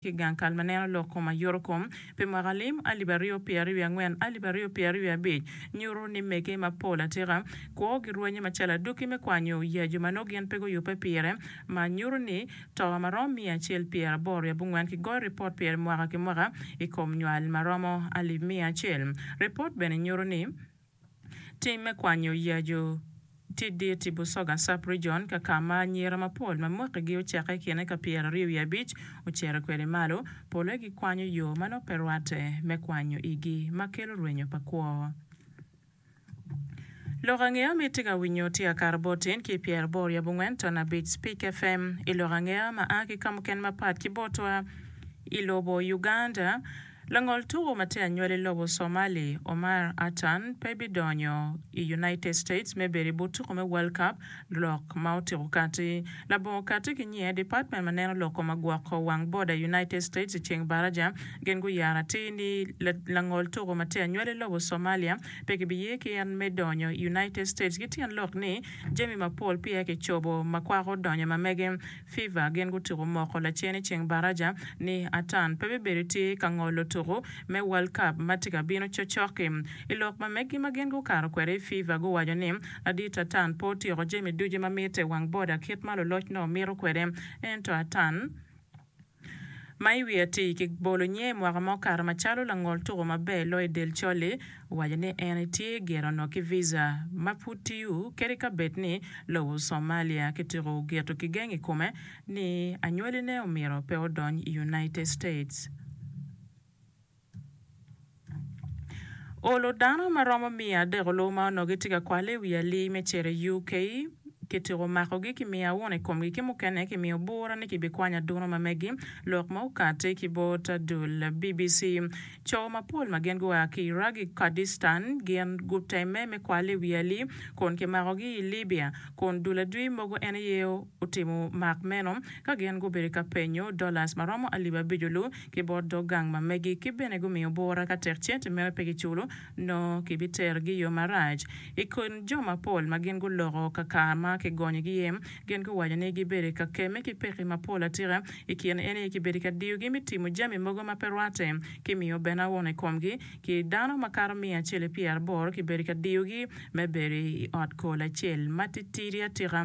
ki gang kal ma neno lok kom ayuto kom pi mwaka lim alip aryo pyeraryo wiye angwen alip aryo pyeraryo wiye abic nyuto ni mege mapol atika kwo girwenye macalo adwoki me kwanyo ya jo ma nongo gin pe guyubbe pire ma nyuto ni toka ma romo miya acel pyera aboro wiye abongwen ki goyo ripot pire mwaka ki mwaka i kom nywal ma romo alip miya acel. Ripot bene nyuto ni. Tim me kwanyo yacu tye dit i Busoga Sub-Region ka ka ma anyira mapol ma mwakigi oceke i kine ka pyera aryo wiye abic ocito kwede malo, pole gikwanyo yo ma nongo pe rwatte me kwanyo igi ma kelo rwenyo pa kwo. Lok angeya ma itye ka winyo tye Akara Bot Tin ki Pyera Aboro Yab Ongwen Ton Abic Speak FM I lok angeya ma a ki ka mukene mapat ki botwa I lobo Uganda, Langol tuko ma tye anywali lobo Somali, Omar Atan pe bidonyo i United States me bedo i but tuko me World Cup lok ma otyeko kati. Labongo kati ki nyiye, Department ma neno loko ma gwoko wang boda i United States i ceng baraja gin guyaro atir ni langol tuko ma tye anywali lobo Somalia pe kibiye ki en me donyo i United States ki tyen lok ni jami mapol peya kicobo ma kwako donyo ma mege Fever gin gutuku moko lacen i ceng baraja ni atan pe bibedo tye ka ngolo tuku me world cup ma tye ka bino cocoki. I lok ma megi ma gin gukato kwede i Fever guwaco ni ladit atan pe otyeko jami ducu ma mitte wang boda kit ma luloc nongo mito kwede ento atan ma i wi atir ki bolo nyer mwaka ma okato macalo langol tuko maber loyo i del col-li, owaco ni en etye gire onongo ki visa ma pud tiyo kadi ka bed ni lobo Somalia kituko geto kigeng i kome ni anywali ne omyero pe odony i United States. Olo dano ma romo miya adeko lobo ma onongo gitye ka kwalle i wi alii me cito i UK. Kitiko makogi ki miyo awun i komgi ki mukene ki miyo bura ni kibikwany aduno ma megi, lok ma okatti ki bot adul. BBC, Co mapol ma gin gua ki Iraq ki Kurdistan gin gutemme me kwalle i wi alii kun kimakogi i Libya kun dul adwi mogo en aye otimo mak meno ka gin gubedo ka penyo dollars ma romo alip abic-lu ki bot dog gang ma megi ki bene gumiyo bura ka tek cente mere pe giculo nongo ki biterogi i yo marac. I kin jo mapol ma gin guloko ka kar ma ki gonyo gi iye gin guwaco ni gi bedo ka kemme ki peki mapol atika i kin en aye ki bedo ka diyo gi me timo jami mogo ma pe rwate ki miyo bene awon i kom gi ki dano ma kato miya acel i pyeraboro ki bedo ka diyo gi me bedo i ot kol acel ma titidi atika